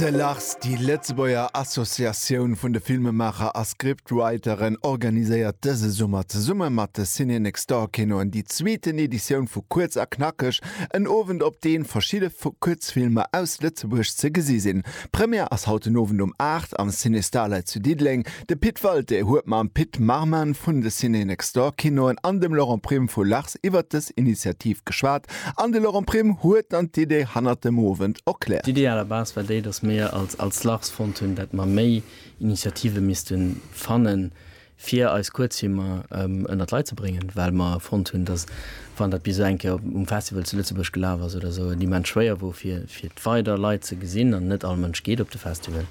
De Lars, déi Lëtzebuerger Associatioun vun de Filmemaacher a Scriptwriteren, organiséiert dëse Summer zesumme mat de Ciné Next Door Kinoen déi zweeten Editioun vu Kuerz a Knackeg, en Owend op dee verschidde Kuerzfilmer aus Lëtzebuerg ze gesi sinn. D'Première ass haut den Owend um 8 am Ciné Starlight zu Diddeleng. De Pit Walté huet mam Pit Marman vun de Ciné Next Door Kinoen an dem Laurent Prim vu Lars oft iwwert dës Initiativ geschwat an de Laurent Prime huet dann d'Idee hannert dem Owend erkläert. D'Idee à la base war déi, datt mir als als LARS fonnt hunn, datt mer méi Initiative misste fanne fir eis Kuerzfilmer ënnert d'Leit ze bréngen, well mer fonnt hunn, datt wann dat bis elo eng Kéier um Festival zu Lëtzebuerg gelaf ass oder esou, et immens schwéier wor fir weider Leit ze gesinn an net all Mënsch geet op de Festival.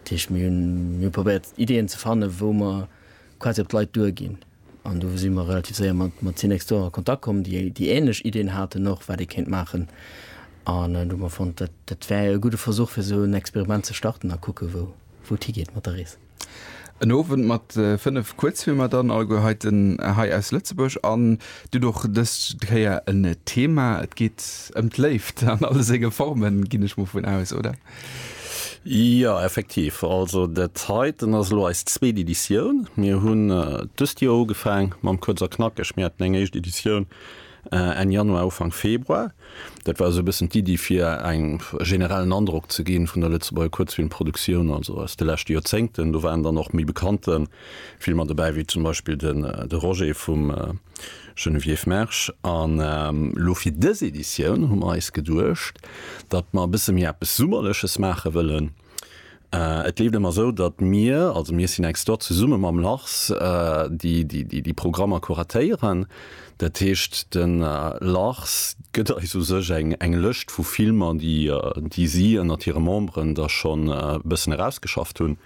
Dat heescht mir hunn probéiert Ideeën ze fanne wou mer quasi op d'Leit duer ginn. An do si mer relativ séier mat, mat Cinextor a Kontakt komm, déi, déi ähnlech Ideen haten och, wat ee kéint maachen. An do hu mer fonnt, dat, dat wär e gudde Versuch, fir esou en Experiment ze starten a kucke wou, wou et higeet mat der Rees. En Owend mat fënnef Kuerzfilmer dann, alleguer heiten, hei aus Lëtzebuerg. An dunn och dës Kéier en Thema. Et geet ëm d'Léift an alle senge Formen, ginn ech mol vun aus, oder? Jo, effektiv. Also dat heiten ass elo eis zweet Editioun. Mir hunn dëst Joer ugefaang mam Kuerz a Knackeg. Mir haten eng éischt Editioun Enn Januar, Ufank Februar. Dat war esou e bëssen d'Iddi fir eng generellen Androck ze ginn vun der Lëtzebuerger Kuerzfilmproduktion, also aus de leschte Joerzéngten. Do waren dann och méi bekannte Filmer dobäi, wéi zum Beispill de Roger vum Geneviève Mersch, An elo fir dës Editioun hu mer eis geduecht, datt mer e bësse méi eppes Summerleches maache wëllen. Et leeft ëmmer esou, datt mir, also mir Synex Stot, zesumme mam Lars déi Programmer kuratéieren. Dat heescht de Lars gëtt eis u sech eng Lëscht vu Filmer, déi si ënnert hire Memberen da schonn e bëssen erausgeschafft hunn.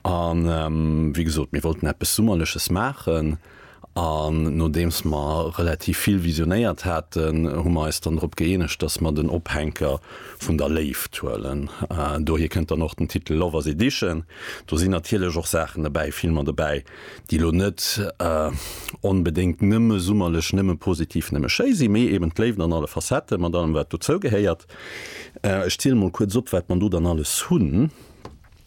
A wéi gesot, mir wollten eppes Summerleches maachen. An nodeems mer relativ vill visionéiert haten, hu mer eis dann drop gëeenegt, dass mer den Ophänker vun der Léift huelen. Dohier kënnt dann och den Titel Lovers Edition. Do sinn natierlech och Saachen dobäi, Filmer dobäi, déi elo net onbedéngt nëmme summerlech, nëmme positiv, nëmme schéi sinn, mee eben d'Léift an alle Facetten, mat allem, wat dozou gehéiert. Ech ziele mol kuerz op, wat mer do dann alles hunn.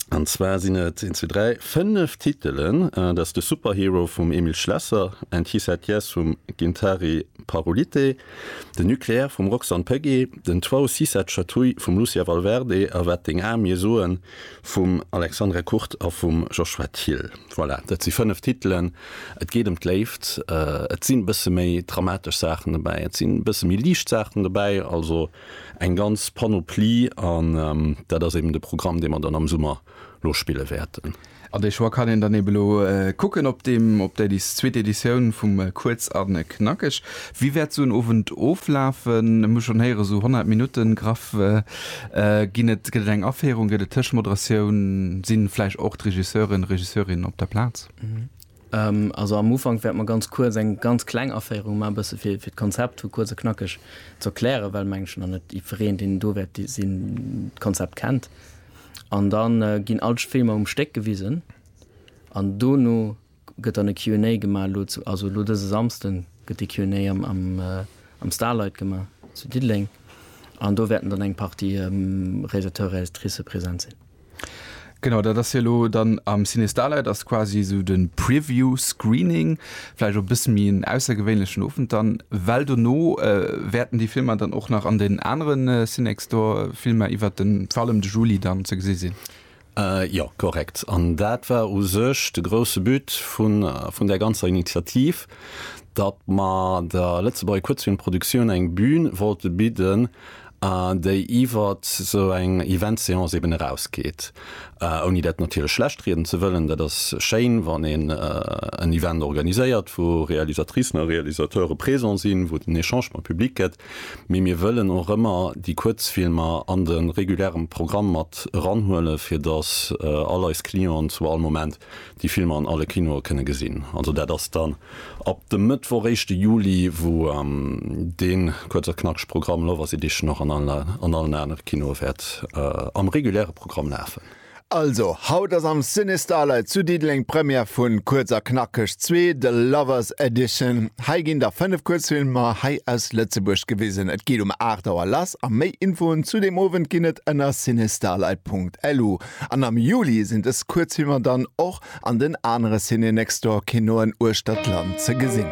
An zwar sinn et, een, zwee, dräi, fënnef Titelen, dat ass de Superhero vum Emil Schlesser, And He Said Yes vum Gintari Parulyte, de Nucléaire vum Roxanne Pegge, den Toit si cette chatouille vum Lucia Valverde a Wat deng Ae mir soen vum Alexandre Kurt a vum Joshua Thiel. Voilà, dat si fënnef Titelen. Et geet ëm d'Léift, et sinn e bësse méi dramatesch Saachen dobäi, et sinn e bësse méi liicht Saachen dobäi, also. Eng ganz Panoplie an dat ass eben de Programm, dee mer dann am Summer lo spille wäerten. An de Choix kann een dann eben elo kucken op deem, op där zweet Editioun vum Kuerz a Knackeg. Wéi wäert esou en Owend oflafen? Ech hu schonn héieren, esou 100 Minutten graff ginn et. Gëtt et eng Aféierung, gëtt et Tëschmoderatioun? Si vläicht och d'Regisseuren, Regisseurinnen op der Plaz? Also am Ufank wäerte mer ganz kuerz eng ganz kleng Aféierung maachen, e bësse fir d'Konzept hu kuerz a knackeg ze erklären, well, meng ech, nach net jiddwereen, deen do wäert sinn, d'Konzept kennt. An da ginn all d'Filmer um Stéck gewisen an dono gëtt dann e Q and A gemaach. Elo, also elo dëse Samsden gëtt de Q and A am Starlight gemaach zu Diddeleng an do wäerten dann eng Partie Réalisateur, Réalisatricë present sinn. Genau, dat ass hie lo dann am Ciné Starlight, ass quasi esou de Preview Screening, vläicht och e bësse méi en aussergewéinlechen Owend dann, well dono wäerten déi Filmer dann och nach an den anere Cinextor Filmer iwwert den vor allem de Juli dann ze gesi sinn. Jo, korrekt. An dat war u sech de grousse But vun där ganzer Initiativ, datt mer der Lëtzebuerger Kuerzfilmproduktioun eng Bühn wollte bidden, déi iwwert esou eng Eventseance eben erausgeet, ouni dat natierlech schlechtrieden ze wëllen. Dat ass schéin, wann een en Event organiséiert, wou Realisatricen a Realisateure présent sinn, wou et en Echange mam Public gëtt, mee mir wëllen och ëmmer déi Kuerzfilmer an de reguläre Programm mat eranhuelen, fir datt all eis Clienten zu all Moment déi Filmer an alle Kinoe kënne gesinn. Also dat ass dann ab dem Mëttwoch, éischte Juli, wou dee kuerz a knackeg Programm Lovers Edition och an allen anere Kinoe wäert am reguläre Programm lafen. Also, haut ass am Ciné Starlight zu Diddeleng d'Première vu Kuerz a knackeg 2, The Lovers Edition. Hei ginn der 5 Kuerzfilmer hei aus Lëtzebuerg gewisen. Et geet um 8 Auer lass a méi Infoen zu deem Owend ginn et ënner cinestarlight.lu. An am Juli sinn dës Kuerzfilmer dann och an den anere Ciné-Next-Door-Kinoen uechter d'Land ze gesinn.